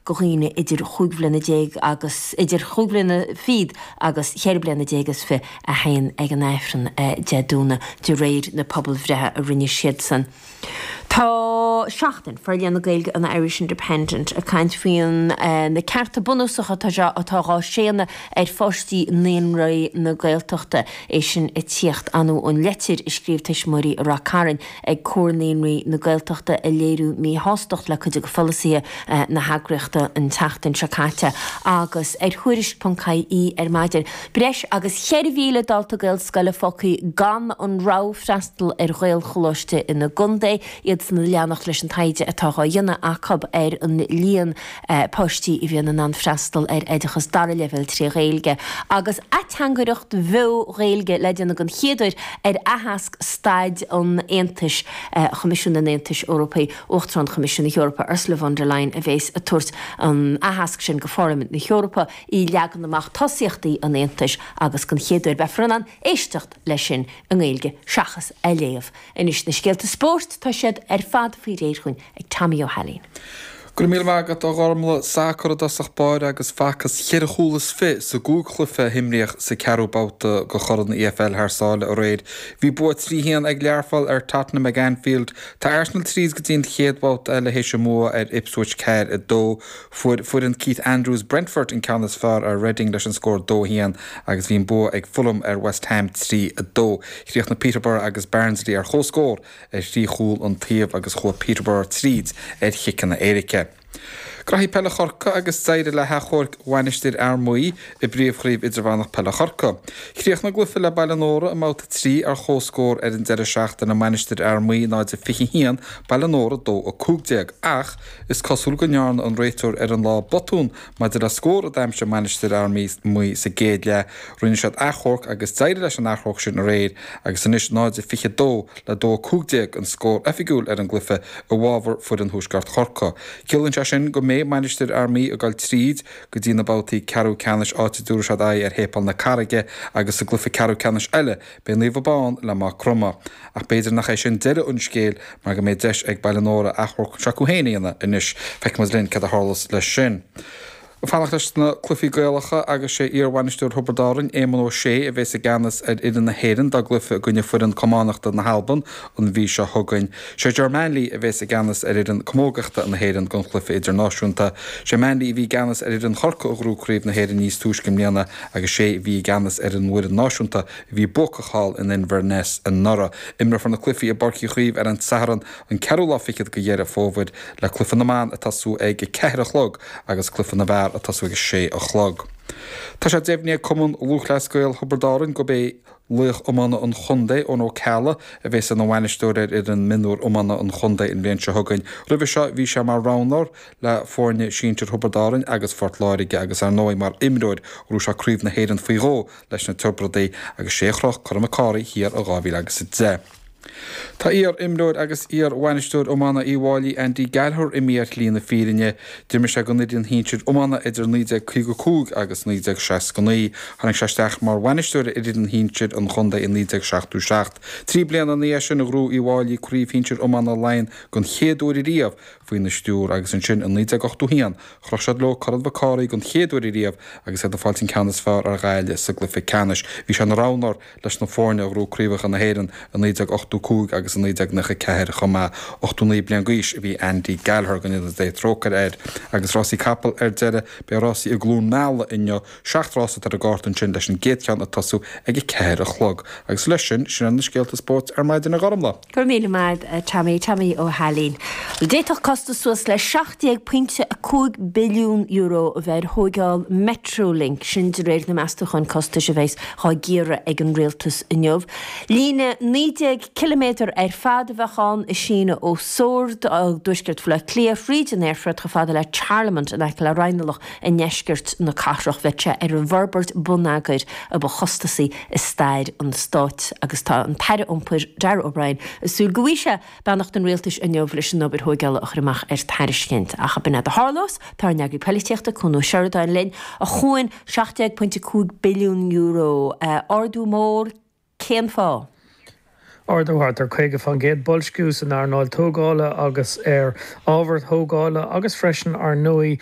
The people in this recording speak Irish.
go dhaoine idir chúig bhliana déag agus idir chúig bhliana fichead agus cheithre bliana déag is fiche a haon ag an Aifreann Dé Domhnaigh, de réir na pobalbhreithe a rinne siadsan. Tá Seachtain, forlíonadh na Gaeilge an Irish Independent, ag caint faoi na cearta bunúsacha atá dhá séanadh ar pháistí naíonraí na Gaeltachta, é sin ag tíocht anuas ar an leitir a scríobh tuismitheoirí Ráth Chairn. ag Comhar Naíonraí na Gaeltachta a léiriú míshástacht le cuid de pholasaithe na heagraíochta an tseachtain seo caite agus ar Thuairisc.ie ar maidin. Breis agus 4,000 dalta Gaelscoile fágtha gan an rogha freastal ar Ghaelcholáiste ina gcontae, iadsan a leanacht leis an taighde atá dhá dhéanamh acu ar an líon páistí a bhíonn in ann freastal ar oideachas dara leibhéal trí Ghaeilge, agus ateangaireacht bheo Ghaeilge le déanamh den chéad uair ar aitheasc Staid an Aontais Choimisiún an Aontais Eorpaigh. Uachtarán Choimisiún na hEorpa, Ursula von der Leyen, a bheas ag tabhairt an aitheasc sin go Pharlaimint na hEorpa, í leagan amach tosaíochtaí an Aontais agus den chéad uair beifear in ann éisteacht leis sin i nGaeilge seachas a léamh. Anois na scéalta spóirt, tá siad ar fad faoi réir dhúinn. ag Tommy Ó hAilín. Go raibh míle maith agat, a Ghormlaith. Sacar i dtosach báire agus facthas cheithre chúl is fiche sa gcúig chluiche a himríodh sa ceathrú babhta de Chorn an EFL thar sáile aréir. Bhí bua trí haon ag Learpholl ar Tottenham ag Anfield. Tá Arsenal tríd go dtí an chéad bhabhta eile théis a mbua ar Ipswich ceathair a dó. Fuair foireann Keith Andrews Brentford an ceann is fearr ar Reading leis an scór dó a haon agus bhí an bua ag Fulham ar West Ham trí a dó. Chríochnaigh Peterborough agus Barnsley ar chomhscór. ar thrí chúl an taobh agus chuaigh Peterborough tríd ar chiceanna éirice. Cúrsaí Peile Chorca agus d'éirigh le hachomharc Mhainistir Fhear Maí i bPríomhchraobh Idirmheánach Peile Chorca. Chríochnaigh a gcluife le Baile Nóra i mBabhta 3 ar chomhscór ar an deireadh seachtaine Mhainistir Fhear Maí 0-21, Baile Nóra 2-15 ach is cosúil go ndearna an réiteoir ar an lá botún Maidir le scór a d'aimsigh Mainistir Fhear Maí sa gcéad leath, rinne siad achomharc agus d'éirigh leis an achomharc sin aréir agus anois 0-22 le 2-15 an scór oifigiúil ar an gcluiche i bhfabhar foireann Thuaisceart Chorcaí. Ciallaíonn sé sin go mbeidh Mainistir Fhear Maí ag dul tríd go dtí na babhtaí ceathrú ceannais áit a dtabharfaidh siad aghaidh ar Shéipéal na Carraige agus sa gcluiche ceathrú ceannais eile Beidh Naomh Abán le Maigh Chromtha, ach b'fhéidir nach é sin deireadh an scéil mar go mbeidh deis ag Baile Nóra achomharc s'acu féin a dhéanamh anois. Feicfidh muid linn céard a tharlós leis sin. Ag fanacht leis na cluichí Gaelacha agus sé iarbhainisteoir Thiobraid Árainn, Éamonn Ó Sé, a bheas i gceannas ar fhoireann na hÉireann dá gcluiche i gcoinne foireann camánachta na hAlban An mhí seo chugainn, sé Ger Manley a bheas i gceannas ar fhoireann camógachta na hÉireann don chluiche idirnáisiúnta. Sé Manley a bhí i gceannas ar fhoireann Chorcaí a ghnóthaigh Craobh na hÉireann níos túisce i mbliana agus sé a bhí i gceannas ar an bhfoireann náisiúnta a bhí buacach thall in Inbhir Nis anuraidh. Imreofar na cluichí i bPáirc Uí Chaoimh ar an Satharn an ceathrú lá fichead de Dheireadh Fómhair le cluiche na mban ag tosú ag a ceathair a chlog agus cluiche na bhfear ag tosú ag a sé a chlog. Tá sé deimhnithe ag Cumann Lúthchleas Gael Thiobraid Árann gurb é laoch iomána an chontae, Eoin Ó Ceallaigh, a bheas ina bhainisteoir ar fhoireann mionúr iomána an chontae an bhliain seo chugainn. Roimhe seo bhí sé mar roghnóir le foirne sinsir Thiobraid Árann agus Phort Láirge agus, ar ndóigh, mar imreoir ghnóthaigh sé craobh na hÉireann faoi dhó leis na Tiobradaigh agus sé a chroch Corn Mhic Cárthaigh thiar in 2010. Tá iar-imreoir agus iar-bhainisteoir iomána Uíbh Fhailí, Andy Gallagher, imithe ar shlí na fírinne. D'imir sé don fhoireann shinsir iomána idir 1955 agus 1969. Tháinig sé isteach mar bhainisteoir ar fhoireann shinsir an chontae i 1977. Trí bliana ina dhiaidh sin, ghnóthaigh Uíbh Fhailí Craobh Shinsir Iomána Laighean den chéad uair riamh faoina stiúir agus ansin i 1981 chroch siad leo Corn Mhic Cárthaigh den chéad uair riamh agus iad ag fáilt an ceann is fearr ar Ghaillimh sa gcluiche ceannais. Bhí sé ina roghnóir leis na foirne a ghnóthaigh craobhacha na hÉireann i 1985 agus i 1994 chomh maith. 89 bliain d'aois a bhí Andy Gallagher, go ndéana Dé trócaire air. Agus rásaí capall ar deireadh, beidh rásaí i gCluain Meala inniu, seacht rása atá ar an gcárta ansin leis an gcéad cheann ag tosú ag a ceathair a chlog. Agus leis sin, sin iad na scéalta spóirt ar maidin a Ghormfhlaith. Go raibh míle maith agat, a Tommy, Tommy Ó hAilín. Bhuel, d'fhéadfadh costas suas le €17.5 billiún, a bheith ar thóigeáil Metrolink, sin de réir na meastúcháin costais a bheas dhá gcíoradh ag an Rialtas inniu. Líne naoi déag ciliméadar ar fad a bheadh ann, ag síneadh ó Sord, i dtuaisceart Bhaile Átha Cliath, thríd an aerfort chomh fada le Charlemont, in aice le Raghnallach, i ndeisceart na cathrach. Bheadh sé ar an bhforbairt bonneagair a ba chostasaí i stair an Stáit agus tá an tAire Iompair, Darragh O'Brien, ag súil go bhfaighidh sé beannacht an Rialtais inniu leis an obair thóigeála a chur amach ar tairiscint. Ach ab in é a tharlós? Tá ár n-eagraí polaitíochta, Cuan Ó Seireadáin, linn, a Chuain, €17.5 billiún, ardú mór, cén fáth? Ardú thart ar 50 faoin gcéad, boilsciú san earnáil tógála agus ar ábhair thógála agus freisin, ar ndóigh,